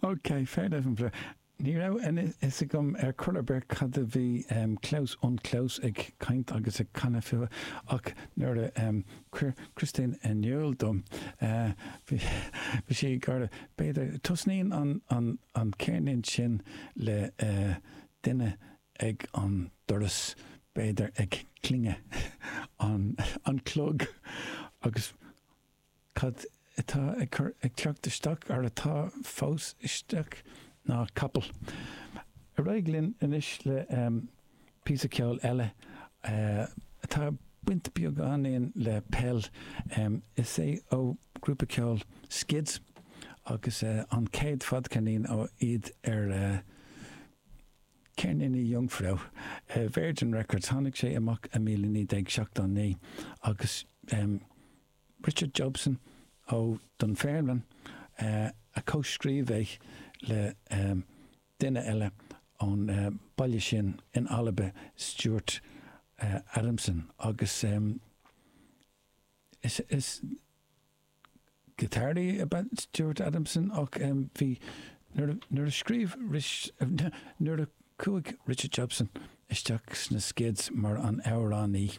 OK, Pferd auf'm Flur. Ní raibh a fhios agam ar chor ar bith cad a bhí Klaus und Klaus ag caint agus ag canadh fúthu, ach nuair a chuir Christine in iúl dom, bhí sí ag gáire. B'fhéidir, tosnaíonn an ceirnín sin le duine ag an doras, b'fhéidir ag clingeadh an cloig, agus. Cad atá ag cur, ag teacht isteach, ar atá fós istigh ná capall. Ar aghaidh linn anois le píosa ceoil eile atá ag baint beagáinín le peil. Is é ó ghrúpa ceoil Skids agus an chéad fadcheirnín ó iad ar Ceirníní Jungfrau, Virgin Records. Tháinig sé amach i 1979 agus Richard Jobson ó Dunfermline a comh-scríobh é le duine eile ón baile sin in Alba, Stuart Adamson, agus is giotáraí ab ea Stuart Adamson ach bhí, nuair a scríobh, nuair a chuaigh Richard Jobson isteach sna Skids mar an amhránaí,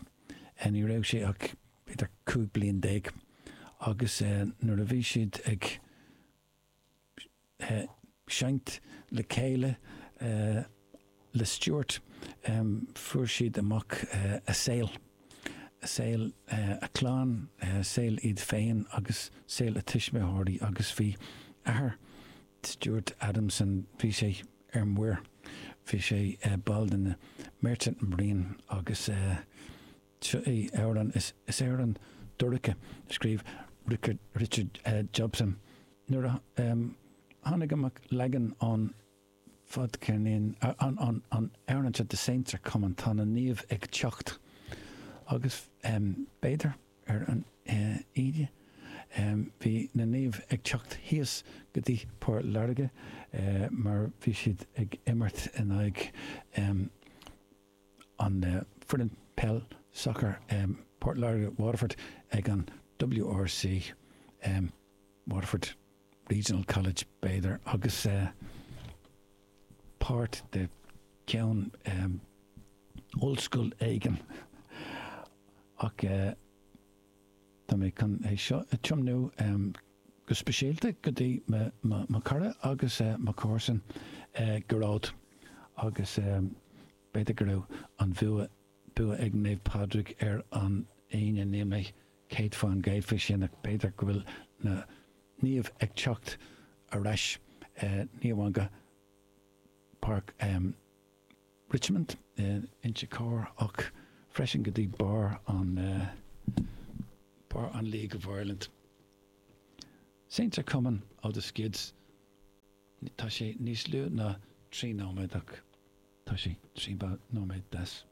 ní raibh sé ach. b'fhéidir 15 bliain, agus nuair a bhí siad ag seinnt le chéile le Stuart fuair siad amach a saol, saol a clann, saol iad féin agus saol a tuismitheoirí agus bhí athair Stuart Adamson, bhí sé ar muir, bhí sé ball de na Merchant Marine agus, Seo é amhrán, is amhrán dorcha a scríobh Richard Jobson. Nuair a tháinig amach leagan ón fadcheirnín an amhráin seo The Saints are Coming tá na naoimh ag teacht agus b'fhéidir ar an Aoine bhí na naoimh ag teacht thíos go dtí Port Láirge mar bhí siad ag imirt in aghaidh an foireann peil, sacar Port Láirge, Waterford, ag an WRC, Waterford Regional College b'fhéidir, agus páirt de cheann ollscoil éigin. Ach tá mé chun é seo a tiomnú. go speisialta go dtí mo chara agus mo chomharsan Gearóid agus b'fhéidir go raibh an bua ag Naomh Pádraig ar an Aoine, níl mé céad fán gcéad faoi sin ach b'fhéidir go bhfuil na Naoimh ag teacht ar ais, ní amháin go Páirc. Richmond, Inse Chór, ach freisin go dtí barr an barr an League of Ireland. Seinntear Cumann ó The Skids, tá sé níos lú ná trí nóiméad ach tá sé trí nóiméad deas.